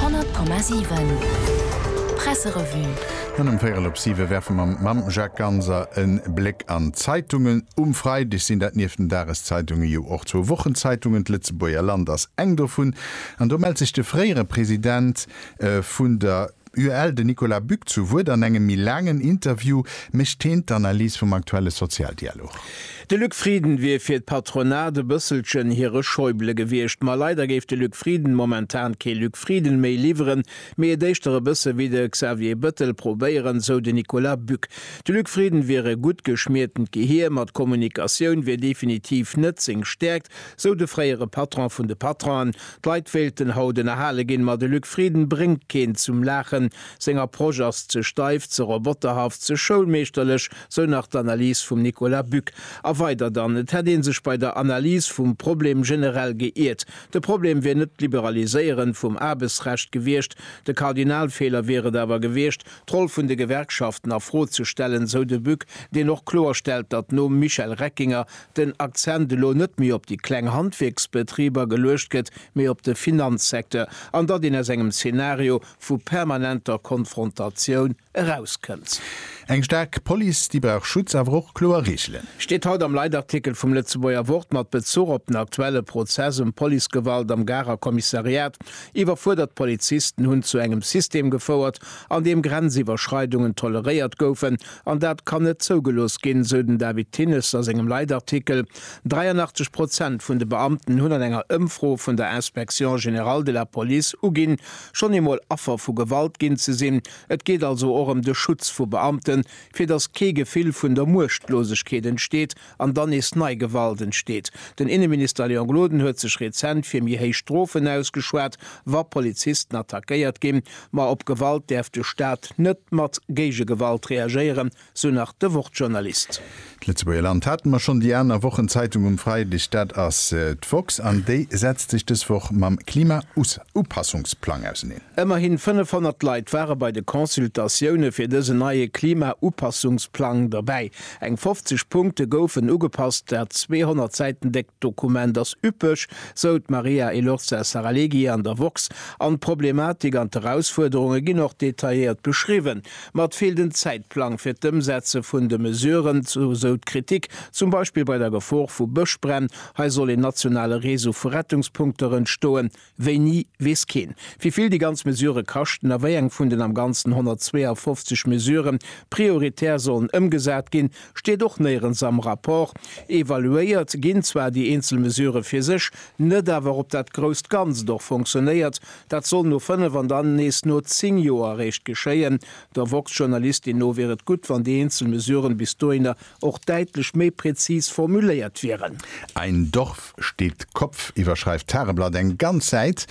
100,7 Presserevue. An ëm véierel op siwe werfe mer mam Jacques Ganser e Bléck an d'Zeitungen. Um Freideg sinn dat nieft den Dageszeitunge jo och zwou Wochenzeitungen. D'Lëtzebuerger Land ass eng dovun an do mellt sech de fréiere President vun der. UEL. Den Nicolas Buck zu Wuert. An engem méi laangen Interview mécht heen d'Analys vum aktuelle Sozialdialog. De Luc Frieden wier fir d'Patronat e bësselchen hire Schäuble gewiescht. Ma leider géif de Luc Frieden momentan kee Luc Frieden méi liwweren, mee et éischter e bësse wéi de Xavier Bëttel probéieren, sou de Nicolas Buck. De Luc Frieden wier e gutt geschmiertent Gehier, ma d'Kommunikatioun wier definitiv net seng Stäerkt, sou de fréiere Patron vun de Patronen. D'Leit wéilten haut ënnerhale ginn, ma de Luc Frieden bréngt keen zum Laachen. Seng Approche ass ze steif, ze roboterhaft, ze schoulmeeschterlech, sou nach d'Analys vum Nicolas Buck. A weider dann, et hätt ee sech bei der Analys vum Problem generell geiert. De Problem wier net d'Liberaliséieren vum Aarbechtsrecht gewiescht, de Kardinalfeeler wier et awer gewiescht, d'Roll vun de Gewerkschaften a Fro ze stellen, sou de Buck, deen och kloerstellt, datt nom Michel Reckinger den Akzent elo net méi op déi kleng Handwierksbetriber geluecht gëtt, mee op de Finanzsecteur, an datt een aus engem Zeenario vu permanenter Konfrontatioun erauskënnt. Eng staark Police, déi brauch Schutz, awer och kloer Reegelen. Steet haut am Leitartikel vum Lëtzebuerger Wort mat Bezuch op den aktuelle Prozess ëm Policegewalt am Garer Kommissariat. Iwwerfuerdert Polizisten hunn zu engem System gefouert, an deem Grenziwwerschreidungen toleréiert goufen, An dat kann net zougelooss ginn, sou den David Thinnes a sengem Leitartikel. 83 Prozent vun de Beamten hunn an enger Ëmfro vun der Inspection générale de la Police uginn, schonn eemol Affer vu Gewalt ginn ze sinn. Et geet also och ëm de Schutz vu Beamten, fir datt kee Gefill vun der Muechtlosegkeet entsteet, an dann nees nei Gewalt entsteet. Den Inneminister Léon Gloden huet sech rezent fir méi héich Strofen ausgeschwat, wa Polizisten attackéiert ginn. Ma op Gewalt däerf de Staat net mat Géigegewalt reagéieren, sou nach de Wort-Journalist. D'Lëtzebuerger Land hate mer schonn, déi aner Wochenzeitung um Freideg, dat ass d'woxx an déi setzt sech dës Woch mam Klima-Upassungsplang auseneen. Ëmmerhin 500 Leit ware bei de Consultatioune fir dësen neie Klima-Upassungsplang dobäi. Eng 50 Punkte goufen ugepasst. Dat 200 Säiten déckt Dokument ass üppeg, sou d'Maria Elorza Saralegui an der woxx. An d'Problematik an d'Erausfuerderunge ginn och detailléiert beschriwwen. Ma et feelt en Zäitplang fir d'Ëmsetze vun de Mesuren, sou d'Kritik, zum Beispill bei der Gefor vu Bëschbränn. Hei soll een nationale Reseau vu Rettungspunkter entstoen. Wéini, weess keen. Wéi vill déi ganz Mesure kaschten a wéi eng vun den am Ganzen 152 Mesurë prioritär sollen ëmgesat ginn, steet och néierens am Rapport. Evaluéiert ginn zwar déi eenzel Mesurë fir sech, net awer ob dat grousst Ganzt och fonctionnéiert. Dat soll no fënnef an dann nees no zéng Joer eréischt geschéien. Der woxx-Journalistin no wier et gutt, wann déi eenzel Mesuren bis dohinner och däitlech méi präzis formuléiert wieren. Ein Dorf steht Kopf iwwerschreift d'Tageblatt eng ganz Säit,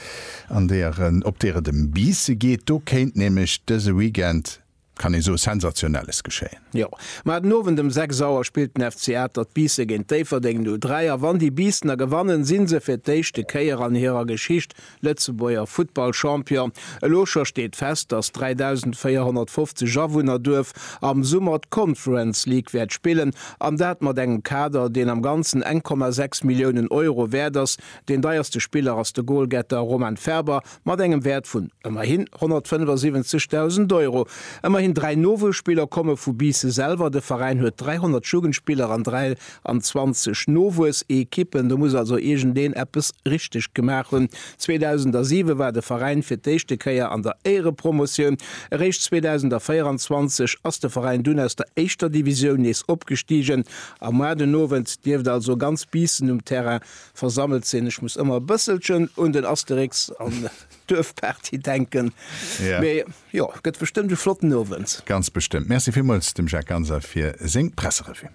an deeër en, op deeër et ëm Biisse geet. Do kéint nämlech dëse Weekend, kann ee soe, Sensationelles geschéien. Jo, mä den Owend ëm 6 Auer spillt den FC Atert d'Biisse géint Déifferdeng 0, 3 a wann déi Biissener gewannen, si se fir d'éischte Kéier an hirer Geschicht Lëtzebuerger Futtball-Champion. Elo scho steet fest, dass d'3.450 Awunner-Duerf am Summer d'Conference League wäert spillen, an dat mat engem Kader, deen am Ganzen 1,6 Milliounen Euro wäert ass. Deen deierste Spiller ass de Golgetter Roman Ferber mat engem Wäert vun ëmmerhin 175.000 Euro. Ëmmerhin dräi Nowuesspiller komme vu Biisse selwer. De Veräin huet 300 Jugendspiller an dräi an 20 Nowuessekippen, do muss also iergendeen eppes richteg gemaach hunn. 2007 war de Veräin fir d'éischte Kéier an der Éierepromotioun. Eréischt 2024 ass de Veräin dunn aus der éischter Divisioun nees opgestigen. Am Mois den Owend dierft also ganz Biissen um Terrain versammelt sinn. Ech muss ëmmer e bësselchen un den Asterix an d'Duerfparty denken, mee jo, gëtt bestëmmt e flotten Owend. Ganz bestëmmt. Merci villmools dem Jacques Ganser fir seng Presserevue.